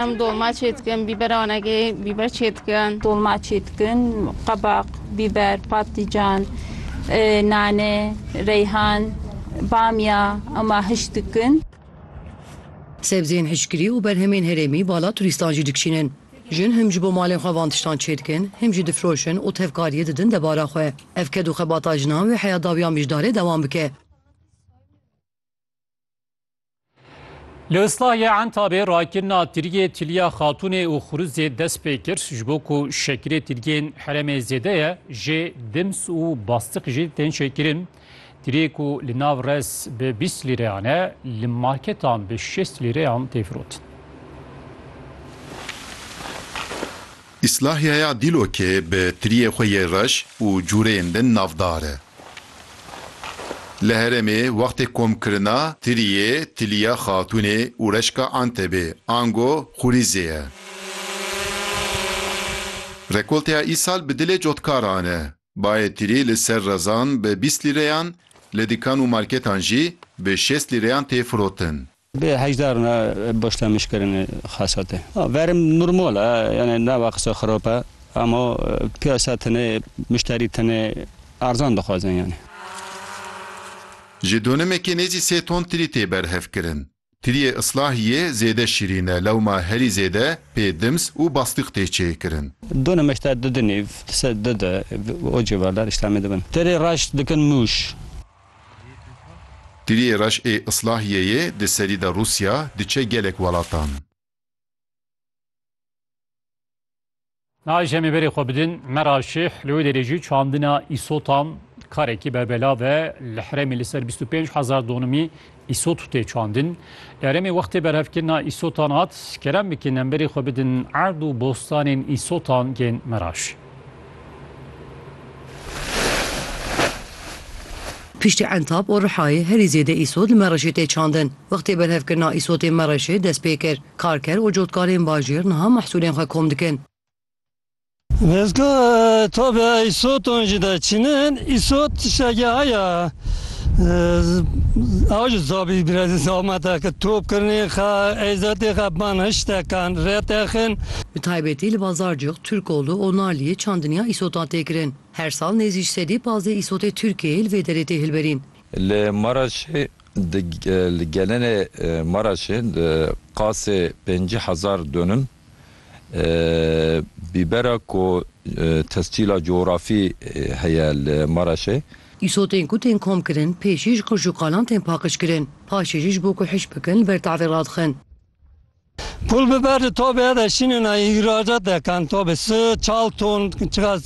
Em dolma çê dikin, bîber anegê bîber çê dikin. Dolma çê dikin, qebaq, bîber, patlican, nane, reyhan, bamya ema hişk dikin. Sebzeyên hişkirî û berhemên herêmî bala turîstan jî dikişînin. Jin him ji bo malên xwe van tiştan çê dikin, him jî difiroşin û tevkariyê didin debara xwe. Ev ked û xebata jinan wê heya dawiyan mijdarê dewam bike. Li Islahiyê Entabê rakirina tirgê Tiliya Xatûnê û Xuruzê dest pê kir ji bo ku şekirê tirgên herêmê zêde ye jê dims û bastiq jî tên şekirin. Tirê ku li nav rez bi bîst lîreyan e li marketan bi şêst lîreyan tê firotin. Îslahiyeya Dîlokê bi tiriyê xwe yê reş û cûreyên din navdar e. Li herêmê wextê komkirina tiriyê Tiliya Xatûnê û Reşka Antebê, ango Xurîzê ye. Rekolteya îsal bi dilê cotkaran e. Bayê tirî li ser rezan bi bîst lîreyan, li dikan û marketan jî bi şêst lîreyan tê firotin. Bi hejdar ne baş temiş kirin xesatê. Verim normal e yanê nava qisa xirab e ema piyasa tenê muşterî tenê erzan dixwazin yanê. Ji donimekê nêzî sê ton tirî tê berhevkirin. Tiriyê Islahiyê zêde şîrîn e, lewma herî zêde pê dims û bastiq tê çêkirin. Du nimeşta di di nîv, di ser di de û civardar îşlamê dibin. Tirê reş dikin mûş. Tiriyê reş ê Islahiyeyê di serî de Rûsya diçe gelek welatan. Nayê jemê berê xwe bidin Meraşîh li wê derê jî çandina îsotan karekî berbelav e. Li herêmê li ser bîst û pênc hezar donimî îsot tê çandin. Eremê wextê berhevkirina îsotan hat, kerem bikin em berê xwe bidin erd û bostanên îsotan yên Meraşîh. Piştî Entab û Rihayê herî zêde îsot li Mereşê tê çandin. Wextê berhevkirina îsotên Mereşê dest pê kir. Karker û cotkarên bajêr niha mehsûlên xwe kom dikin. Dezgaha Entabê ya îsotan jî dest çînin. Îsot tiştekî heye ew jî zabî girêdî zahmeteke top kirinê xe, eyzetê xe ban hiştekan rê texin. Bi taybetî li Bazarcix Turkoglu û Naliyê çandiniya îsotan tê kirin. Her sal nêzî ji sedî pazdeh îsotê Tirkiyeyê li vê derê tê hilberîn. Li Maraşê di li gelenê Maraşê di qasê pêncî hezar donim bîbera ku tescîla cografî heye li Maraşê. Îsotên ku tên kom kirin pêşî ji qirj û qalan tên paqij kirin. Paşê jî ji bo ku hişk bikin li ber tavê radixin. Pul biber di tobê de şînin ay îhracat dekan tobê si çal ton çiqas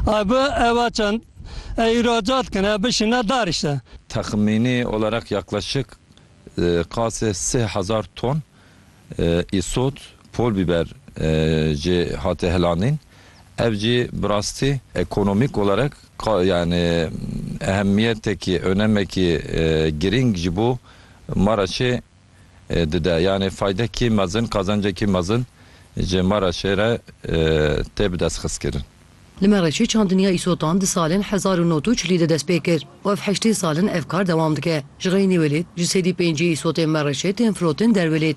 ay bi eva çend ay îhracat kin ev bişîne dar işte. Texmînî olerek yaklaşik qasê sih hezar ton îsot pul biber jê hate hilandîn ev jî bi rastî ekonomîk olerek yanî ehemiyetekî onemekî girîng ji bo Maraşê dide. Yanê faydekî mezin, qazancekî mezin ji me re şêre tê bi destxistkirin. Li Mereşê çandiniya îsotan di salên hezar û nod û çilî de dest pê kir û ev heştê sal in ev kar dewam dike. Ji xeynî welêt ji sêdî pêncî îsotên Mereşê tên firotin derwelêt.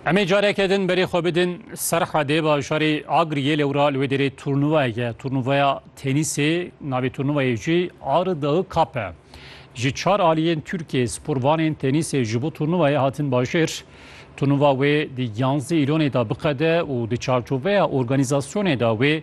Emê careke din berê xwe bidin serha dê bajarê Agriyê lewra li wê derê turnuvayeke turnuvaya tenîsê navê turnuvayê jî Arı Dağı Cup e. Ji çar aliyên Tirkiye sporvanên tenîsê ji bo turnuvayê hatin bajêr. Turnuva wê di yanzdeh îlonê de biqede û di çarçoveya organîzasyonê de wê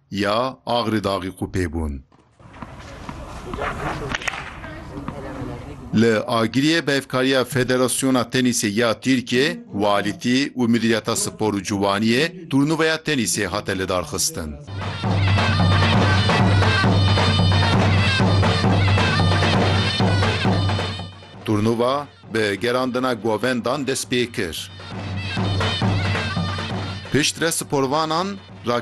Ya Agri Daxî qû pê bûn. Li Agiriyê bihevkariya Federasyona Tenîsê ya Tirkiyê, Quality û Midîriyeta Spor û Ciwaniyê turnûveya tenîsê hate lidarxistin. Turnûva bi gerandina govendan dest pê kir. Piştre sporvanan,